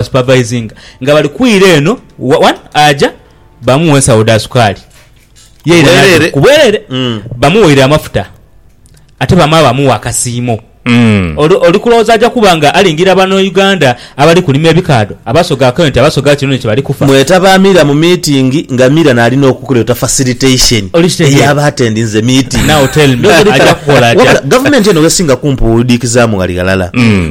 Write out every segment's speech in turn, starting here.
supervisinga nga bali kwira eno one aja bamuwa ensawo dha sukaali yeira Bwerere. ku bwerere Mm. bamuweire amafuta ate bamala bamuwa akasiimo Mm. Oli- oli kulowooza aja kuba nga alingira bano uganda abali kulima ebikaadho abasoga akawunti abasoga kino ni kye bali kufa mwetaba mira mu meeting nga mira nalina okukuleta facilitation Oli kitegeera. eyaba atendinze meeting Now tell me, Byogere aja kala. kukola atya? Wabula, gavumenti eno wesinga kumpuudiikizaamu ghali ghalala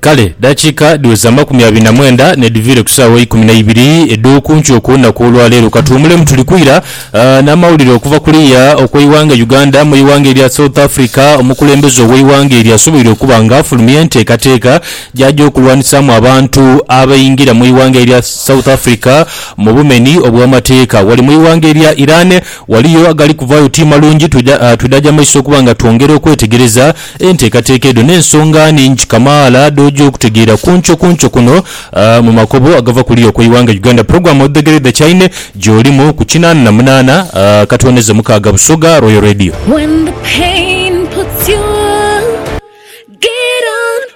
Kale dakiika dhiweze amakumi abiri na mwenda n'edhiviire ku saawa eikumi na ibiri edh'oku nkyo ku lunaku olwa leero. Ka tuwumulemu tuli kwira n'amawulire okuva kuliya okw'eighanga Uganda. Mu ighanga erya South Africa, omukulembeze ow'eighanga eryo asoboire okuba nga afulumya enteekateeka gy'aja okulwanisaamu abantu abaingira mu ighanga erya South Africa mu bumeni obw'amateeka. Wale mu ighanga erya Iran waliyo agali kuvaayo ti malungi, twidhaja maiso okuba nga twongera okwetegereza. Enteekateeka edho n'ensonga nhingi kamaala dh'oja okutegeera ku nkyo ku nkyo kuno mu makobo agava ku luya okw'eighanga Uganda. Pulogulaamu Odhegere The Chaine gy'olimu ku kinaana na munaana akatooneza mukaaga Busoga Royal Radio.